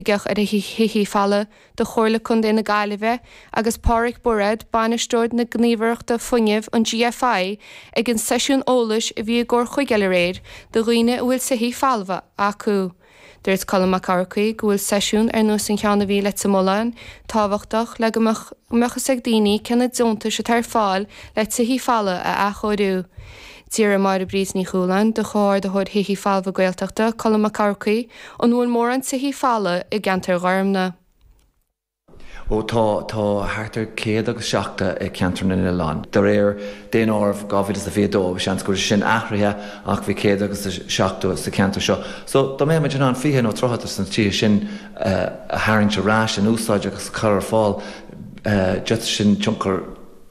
Oifigeach ar Thithe Folmha do Chomhairle Contae na Gaillimhe agus Páraic Bairéad, Bainisteoir na Gníomhaireachta Fuinnimh, an GFI, ag an seisiún eolais a bhí i gComhar Chuigéal aréir do dhaoine a bhfuil tithe folmha acu. Dúirt Colm Mac Eachmharcaigh go bhfuil seisiún ar nós an cheann a bhí i Leitir Mealláin tábhachtach le go mbeadh fhios ag daoine cé na deontais atá ar fáil le tithe folmha a athchóiriú. D'fhiafraigh Máire Bríd Ní Chualáin de Chomhordaitheoir Thithe Folmha Gaeltachta, Colm Mac Eachmharcaigh, An bhfuil mórán tithe folmha i gceantar Gharmna. Ó tá, tá thart ar 170 i gceantar na nOileán. De réir Daonáireamh 2022 bhí seans go raibh sé sin athraithe ach bhí 170 sa cheantar seo. So dá mbeadh muid in ann 20 nó 30 de na tithe sin a tharraingt ar ais, in úsáid agus a chur ar fáil, eh, d'fhéadfadh sin tionchar,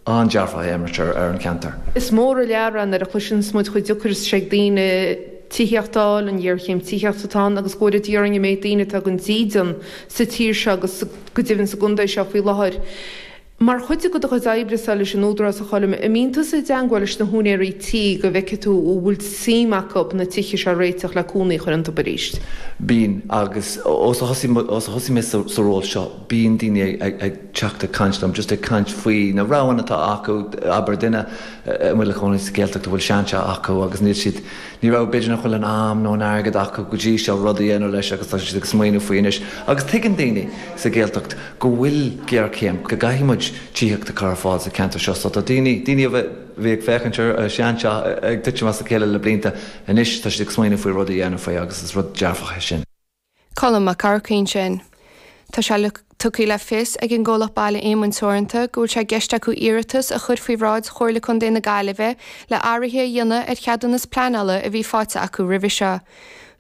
an-dearfach a imirt ar an cheantar. Is mór an lear é nuair a chloiseann muid chomh deacair is atá sé ag daoine tithíocht a fháil, an ghéarchéim tithíochta atá ann agus go bhfuil ardú ar an méid daoine atá gan dídean sa tír seo agus go deimhin sa gcontae seo faoi láthair. Mar chuid de do chuid oibrese leis an Údarás a Choilm, an mbíonn tusa i dteangmháil leis na húinéirí tí go bhfeicfidh tú an bhfuil suim acu na tithe seo a réiteach le cónaí a chur iontu arís? Bíonn, agus ó thosaigh mé sa ról seo bíonn daoine ag. teacht ag caint liom, just ag caint faoi na roghanna atá acu, abair duine a bhfuil a chónaí sa Ghaeltacht a bhfuil seanteach acu agus níl siad, ní raibh, b'fhéidir nach bhfuil an am nó an airgead acu go dtí seo rud a dhéanamh leis agus tá siad ag smaoineamh faoi anois agus tuigeann daoine sa Ghaeltacht go bhfuil géarchéim, go gcaithfidh muid tithíocht a chur ar fáil sa cheantar seo so tá daoine, daoine a bhí ag féachaint ar an seanteach ag titim as a chéile le blianta, anois tá siad ag smaoineamh faoi rud a dhéanamh faoi agus is rud dearfach é sin. Colm Mac Eachmharcaigh ansin. Tá sé tugtha le fios ag an gcomhlacht Baile Éamoinn Teoranta go bhfuil sé i gceist acu iarratas a chur faoi bhráid Chomhairle Contae na Gaillimhe le athruithe a dhéanamh ar cheadúnas pleanála a bhí faighte acu roimhe seo.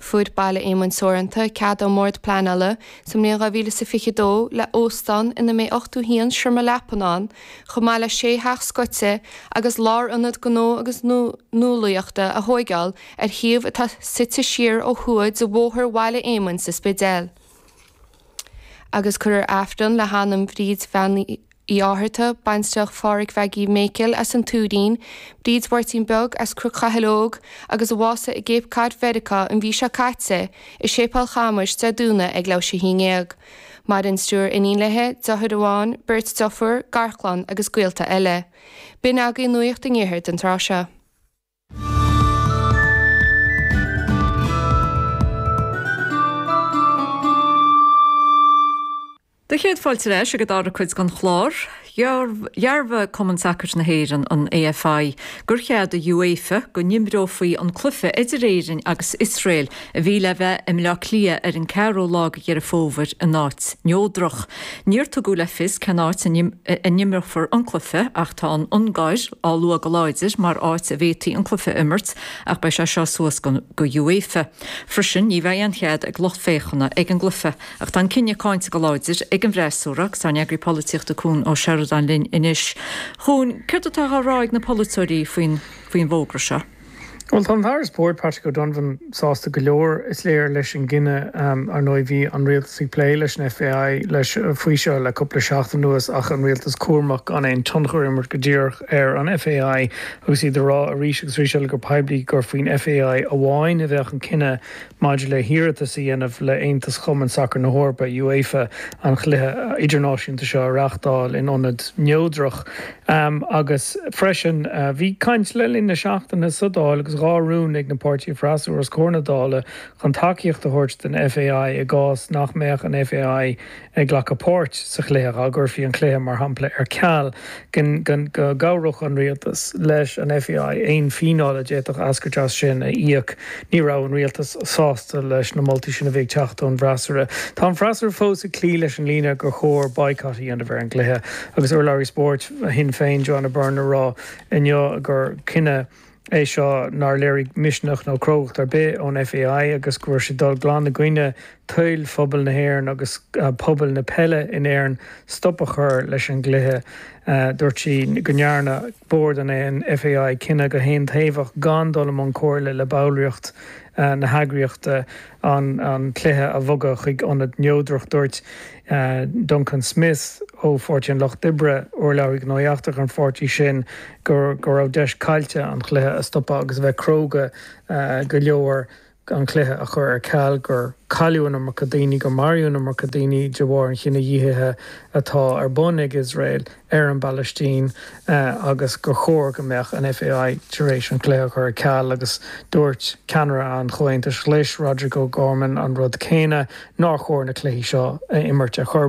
Fuair Baile Éamoinn Teoranta cead ón mBord Pleanála sa mbliain 2022 le óstán ina mbeidh 81 seomra leapan ann chomh maith le 6 theach scoite agus lárionad gnó agus nuálaíochta a thóigeáil ar shuíomh atá suite siar ó thuaidh de Bhóthar Bhaile Éamoinn sa Spidéal, agus cuirfear Aifreann le hanam Bhríd Bhean Uí Fhátharta, baintreach Phádraig Mhaggie Mhéicil as an Tuairín, Bríd Mháirtín Beag as Cruc Chathail Óg agus a bhásaigh i gCape Cod Mheiriceá an mhí seo caite i Séipeál Chamuis Dé Domhnaigh ag leathuair tar éis a haon déag. Maireann triúr iníon léi, deartháir amháin, beirt deirfiúr, garchlann agus gaolta eile. B'in agaidh nuaíocht an iarthair don tráth seo. Do chéad fáilte ar ais ag an dara cuid den chlár, dhearbhaigh Cumann Sacair na hÉireann, an AFI, gur cheadaigh UEFA go n-imreofaí an cluiche idir Éirinn agus Iosrael a bhí le bheith i mBleá Cliath ar an 4ú lá de Dheireadh Fómhair in áit neodrach. Níor tugadh le fios cén áit a n-imreofar an cluiche ach tá an Ungáir á lua go láidir mar áit a bhféadfaí an cluiche a imirt ach beidh sé seo suas go UEFA. Freisin ní bheidh aon chead ag lucht féachana ag an gcluiche ach tá an cinneadh cáinte go láidir ag an bhfreasúra agus tá an tEagraí Polaitíochta Cuan Ó Seireadáin linn anois. Cuan, céard atá á rá ag na polaiteoirí faoin bhfógra seo? Bhuel, tá an tAire Spóirt, Patrick O'Donovan, sásta go leor, is léir, leis an gcinneadh. Ar ndóigh, bhí an Rialtas ag plé leis an FAI faoi seo le cúpla seachtain anuas ach an Rialtas cúramach gan aon tionchar a imirt go díreach ar an FAI agus iad ag rá arís agus arís eile go poiblí gur faoin FAI amháin a bheadh an cinneadh maidir le hiarratas a dhéanamh le hAontas Cumann Sacair na hEorpa, UEFA, an cluiche idirnáisiúnta seo a reáchtáil in ionad neodrach. Um agus freisin, bhí caint le linn na seachtaine sa Dáil agus dhá rún ag na páirtithe freasúra os comhair na Dála chun tacaíocht a thabhairt don FAI i gcás nach mbeadh an FAI ag glacadh páirt sa chluiche, dá gcuirfí an cluiche, mar shampla, ar ceal, go gcabhródh an Rialtas leis an FAI aon fíneáil a d'fhéadfadh eascairt as sin a íoc. Ní raibh an Rialtas sásta leis na moltaí sin a bhí ag teacht ón bhfreasúra. Tá an freasúra fós ag cloí leis an líne gur chóir baghcat a dhéanamh ar an gcluiche. agus urlabhraí spóirt Shinn Féin Joanna Byrne ag rá inniu gur cinneadh é seo nár léirigh misneach nó crógacht ar bith ón FAI agus go bhfuil siad dul glan i gcoinne toil phobal na hÉireann agus pobail na peile in Éirinn stop a chur leis an gcluiche. Dúirt sí go ndearna bord an FAI cinneadh go haontaobhach gan dul i mbun comhairle le ballraíocht na heagraíochta. an cluiche a bhogadh chuig ionad neodrach. Dúirt Duncan Smith ó Pháirtí an Lucht Oibre, urlabhraí gnóthaí eachtracha an pháirtí sin, go raibh deis caillte an cluiche a stopadh agus a bheith cróga go leor an cluiche a chur ar ceal, gur cailleadh an iomarca daoine, gur maraíodh an iomarca daoine de bharr an chinedhíothaithe atá ar bun ag Iosrael. ar an bPalaistín agus gur chóir go mbeadh an FAI tar éis an cluiche a chur ar ceal agus dúirt ceannaire an Chomhaontais Ghlais, Roderic O'Gorman an rud céanna, nár chóir na cluichí seo a imirt ar chor ar bith.